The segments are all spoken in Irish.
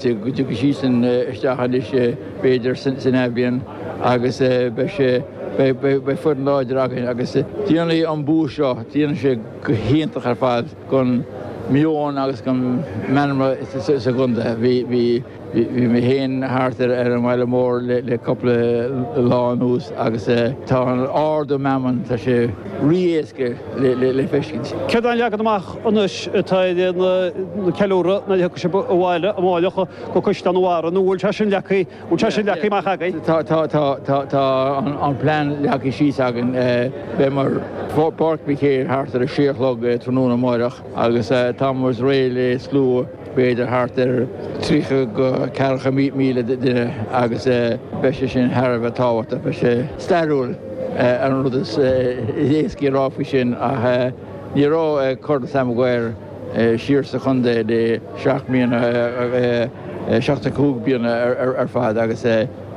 Tiocfaidh sí sin isteach anois b'fhéidir san athbhliain agus beidh foireann láidir againn agus déanfaidh an bua seo, déanfaidh sé go hiontach ar fad don mheon agus don mheanma sa gcontae. Bhí mé féin thart ar an bhaile mór le cúpla lá anuas agus tá an ardú meanman, tá sé rí-éasca le feiscint. Céard é an leagan amach anois atá ar an gceiliúradh, nuair a thiocfaidh sibh abhaile amárach go Caisleán an Bharraigh, nó an bhfuil sé sin leagtha, an bhfuil sé sin leagtha amach agaibh? Tá, tá, tá, tá, tá an plean leagtha síos againn. Beimid i bPáirc Mhic Éil thart ar a sé a chlog tráthnóna amárach agus táimid réidh le slua b'fhéidir thart ar tríocha go ceathracha míle duine agus beidh sé sin thar a bheith tábhachtach, beidh sé stairiúil an rud is éascaí a rá faoi sin ach. Ní raibh Corn Sam Maguire siar sa chontae le seacht mbliana, seachtó cúig bliana ar fad agus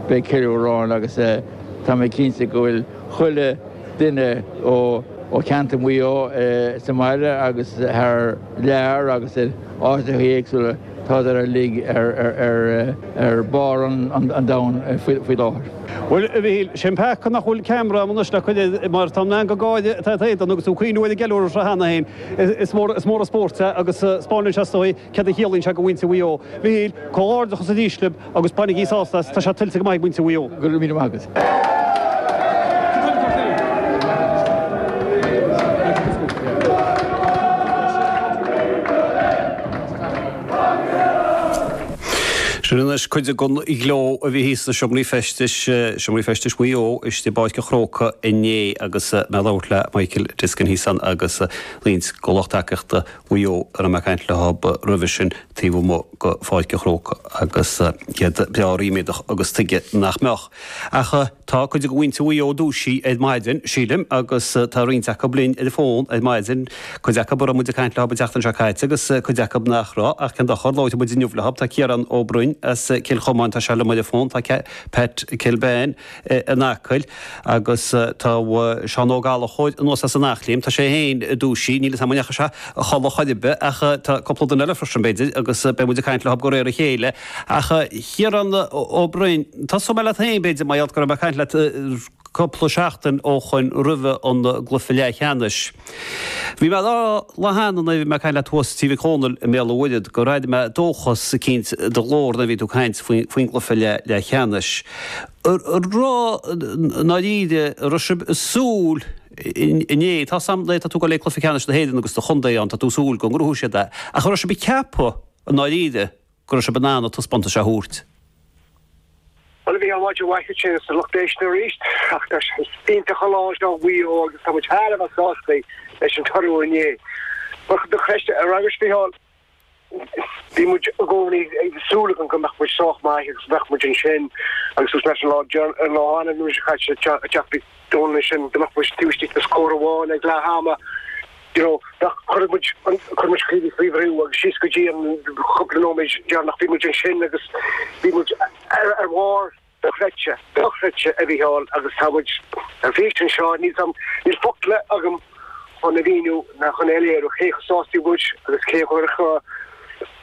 beidh ceiliúradh ann agus tá mé cinnte go bhfuil chuile duine ó cheantar Mhaigh Eo sa mbaile agus thar lear agus in áiteachaí éagsúla Tádar uilig ar bharr an domhain faoi láthair. Bhuel, a Mhíchíl, 'sé an peaca nach bhfuil ceamara agam anois le cur ort mar tá an meangadh gáire atá ar t'éadan agus tú ag cuimhniú ar an gceiliúradh seo cheana féin, is mór an spórt é agus 'speáineann sé, is dóigh, céard a chiallaíonn sé do mhuintir Mhaigh Eo. Mhíchíl, comhghairdeachas arís libh. Agus bainigí sásamh as, tá sé tuillte go maith ag muintir Mhaigh Eo. Go raibh míle maith agat. Sin anois cuid den ghleo a bhí thíos sna seomraí feistis, seomraí feistis Mhaigh Eo istigh i bPáirc an Chrócaigh inné agus mé ag labhairt le Michael Diskin thíos ann agus roinnt de lucht tacaíochta Mhaigh Eo a raibh mé ag caint leo roimhe sin taobh amuigh de Pháirc an Chrócaigh agus iad breá ríméadach agus tuige nach mbeadh? Ach tá cuid de mhuintir Mhaigh Eo dúisithe ar maidin, sílim, agus tá roinnt acu linn ar an bhfón ar maidin, cuid acu a raibh muid ag caint leo an tseachtain seo caite agus cuid acu nach raibh, ach cén dochar, labhróidh muid inniu leo. Tá Ciarán Ó Broin as Cill Chomáin, tá sé liom ar an bhfón, tá Pat Kilbane, in Acaill agus tá Seán Ó Gallchobhair anuas as an Eachléim, tá sé féin dúisithe, níl 'fhios a'm an ndeachaigh sé a chodladh chor ar bith ach tá cúpla duine eile freisin b'fhéidir agus beidh muid ag caint leo de réir a chéile. Ach Ciarán Ó Broin, tosóidh mé leat féin b'fhéidir mar gheall go raibh mé ag caint leat cúpla seachtain ó shoin roimhe an gcluiche leathcheannais, Bhí mé ag rá le hAnna nuair a bhí mé ag caint leat thuas tigh Mhic Dhomhnaill i mBéal an Mhuirthead, gur airigh mé dóchas eicínt i do ghlór nuair a bhí tú ag caint faoin gcluife leathcheannais. An raibh i ndáiríre, an raibh sibh ag súil inné, tá 'fhios a'm le, tá tú ag gabháil le cluife ceannais na hÉireann agus do chontae ann, tá tú ag súil go ngnóthóidh siad é, ach an raibh sibh ag ceapadh i ndáiríre, go raibh siad in ann an taispeántas seo a thabhairt. Bhuel, a Mhícheáil, maidin mhaith duit agus do lucht éisteachta arís. Ach tá sé iontach an lá seo do Mhaigh Eo agus tá muid thar a bheith sásta leis an toradh inné. Ach chun do cheist a fhreagairt, Mícheál, bhí muid i gcónaí ag súil againn go mbeadh muid sách maith agus bheadh muid ansin agus leis an lá an lá arna mhí seo caite teacht Dúinne sin go mbeadh muid taobh istigh de scór amháin ag leath ama, you know, bheadh, chuirfeadh muid an, chuir muid faoi bhrú agus síos go dtí an cúpla nóiméid deireanach bhí muid ansin agus bhí muid ar, ar bharr, dochreidte, dochreidte a Mhícheáil agus tá muid ar bís anseo, níl a fhios agam, níl focla agam chun a mhíniú ná chun a léiriú cé chomh sásta muid agus cé chomh,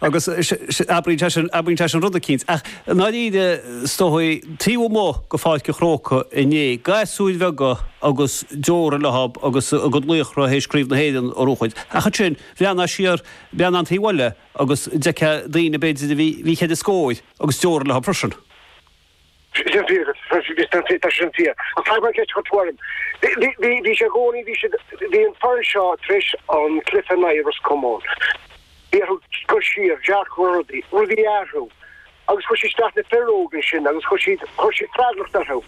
Agus abraíonn sé sin rud eicínt, ach i ndáiríre, is dóigh, taobh amuigh de Pháirc an Chrócaigh inné, gasúir bheaga agus deora leo agus a gcuid laochra théis Craobh na hÉireann a chrochadh. Ach ansin, bhreathnófá siar beagnach an taobh eile agus d'fheicfeá daoine, b'fhéidir, a bhí cheithre scóir agus deora leo freisin. sin fíor agus tá sin fíor. Ach caithfidh mé ceist a chur tuairim. Bhí sé i gcónaí, bhí siad, bhí an foireann seo tar éis an cluiche in aghaidh Ros Comáin, bhí orthu cur siar, dearcadh rudaí, rudaí a athrú agus chuir siad isteach na fir óg ansin agus chuir siad, chuir siad freagracht orthu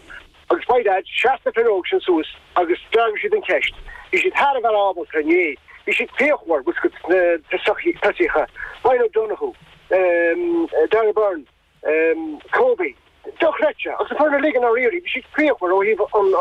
agus by dad sheas na fir óg sin suas agus d'fhreagair siad an cheist. Bhí siad thar a bheith ábalta, inné, bhí siad fíochmhar, bhfuil a fhios agat, sna tosaíocha, Ryan O'Donoghue, Darragh Beirne, Kobe. Dochreidte. Agus an foireann uilig i ndáiríre, bhí siad fíochmhar ó thaobh an.